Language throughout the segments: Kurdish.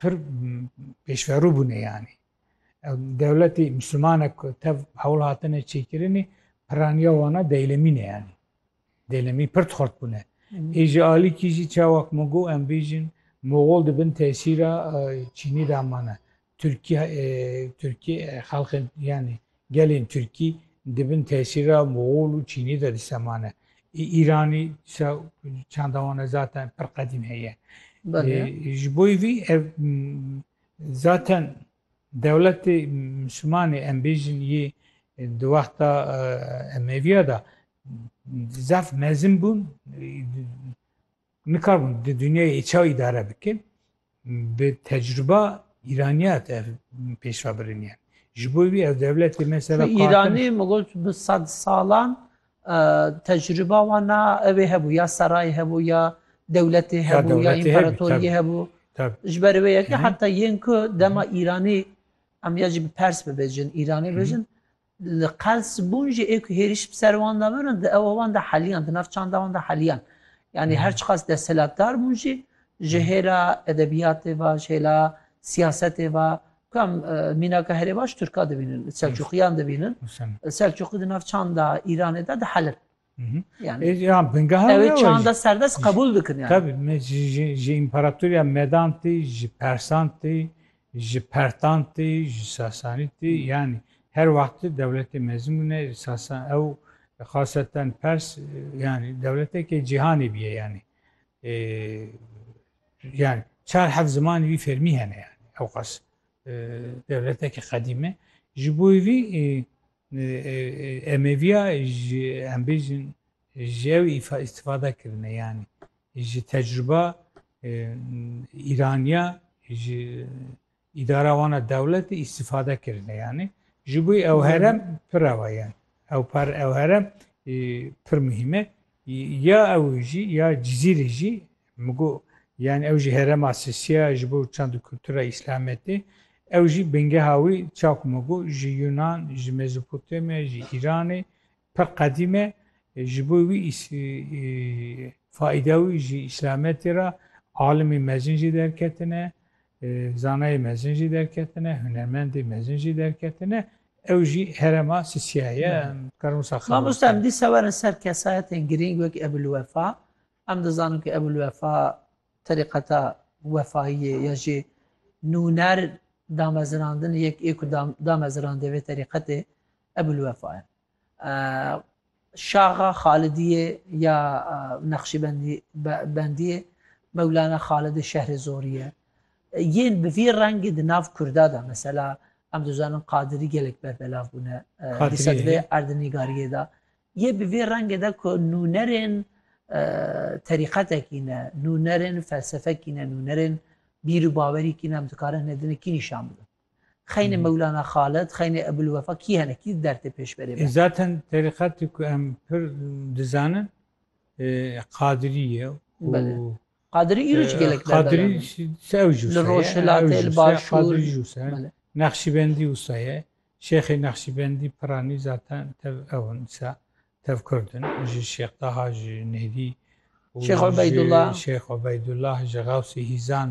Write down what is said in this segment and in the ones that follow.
Pir pêşverû bûne yanî. Dewletî Mislimanek tev hewl hatine çêkirinê piraniya wana deylemî ne yanî. Deylemî pir xort bûne. Ê ji alîkî jî çawa ku min got em bêjin Moxol di bin tesîra Çînî de mane. Tirkî Tirkî xelxên yanî Gelên Tirkî di bin tesîra Moxol û Çînî de dîsa mane. Ê Îranî dîsa çanda wan e zaten pir qedîm heye. Ji bo vî ev zaten dewletê Mislimanê em bêjin yê di wexta Emewîya de zaf mezin bûn. Nikarbin di dunyayê çawa îdare bikin? Bi tecrûba îranîya te ev pêşva biriniye. Ji bo wî ev dewletê mesela Kartim... Îranî min got bi sed salan tecrûba wan na evê hebû ya serayê hebû ya dewletê hebû ya împaratoriyê hebû. Ji ber wê yekê heta yên ku dema îranî em ya jî bi pers bibêjin îranî bêjin Li qels bûn jî ê ku hêrîş bi ser wan de birin di ewa wan de heliyan, di nav çanda wan de heliyan. Yanî her çiqas desthilatdar bûn jî ji hêla edebiyatê ve, ji hêla siyasetê ve ku em mînaka herê baş Tirka dibînin, Selçûqiyan dibînin. Selçûqî di nav çanda Îranê de dihelin. Yani, e, ya bingaha ew çanda serdest kabul dikin yani. Tabii me ji, ji imparatoriya medan tê, ji persan tê, ji pertan tê, ji sasanî tê hmm. yani her wextî dewletê mezin bûne sasan ew xaseten pers yani dewletekê cîhanê bîye yani. E, yani çar heft zimanî wî fermî hene yani ew qas e, dewletekê qedîme. Ji bo wî e, Emêviya ji em bêjin ji ew îstifade kirine yanî ji tecrûba Îraniya ji îdara wan a dewletê îstifade kirine yanî ji bo ew herem pirrewa yan ew par ew herem pir muhîme Ya ew jî ya Cizîrî jî min got yanî ew jî herêma Sisî ye ji bo çand û kultura Îslametê. Ew jî bingeha wî çawa ku min got ji Yunan, ji Mezopotamya, ji Îranê pir qedîm e. Ji bo wî faîda wî ji Îslametê re alimên mezin jî derketine. Zanayê mezin jî derketine, hunermendê mezin jî derketine, ew jî herema Sisya ye, em dikarin wisa xebat bikin. Mamoste em dîsa werin ser kesayetên girîng wek Ebûlwefa, em dizanin ku Ebûlwefa terîqeta wefayiyê ya jî nûner damezirandin yek ê ku damezirandê vê terîqetê Ebûlwefa ye. Şaxa Xalidiyê ya Neqşîbendiyê Mewlana Xalidê şehrê Zorî ye. Yên bi vî rengê di nav Kurda de mesela em dizanin Qadirî gelek berdelav bûne dîsa di vê erdnîgariyê de yê bi vî rengê de ku nûnerên terîqetekî ne, nûnerên felsefekî ne, nûnerên bîr û bawerî kî ne em dikarin hinê din kî nîşan bidin. Xeynê Mewlana Xalid, xeynê Ebûlwefa kî hene, kî di dertê pêşberê be? Zaten terîqetê ku em pir dizanin Qadirî ye û Belê. Qadirî îro jî gelek berdaran Qadirî in. jî se ew jûse ye. Li Rojhilatê, ew li jûse, Başûr. Qadirî jûse. Belê. Nexşîbendî wisa ye. Şêxê Nexşîbendî piranî zaten tev ew in dîsa. Tev Kurd in. Ji Şêx Taha, ji Nêrî û Şêx Ubeydullah. ji Şêx Ubeydullah, ji Xewsê Hîzan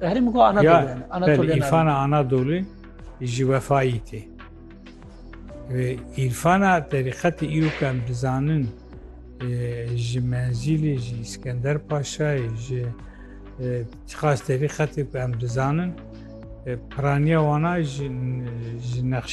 Tahrim go ana ya, dole. Ana dole. İrfana ana dole ji vefayî tê. Ve İrfana terîqetî îro ke em dizanin ji menzîlê ji İskender Paşayê ji xas terîqetê ku em dizanin piraniya wana ji nexşî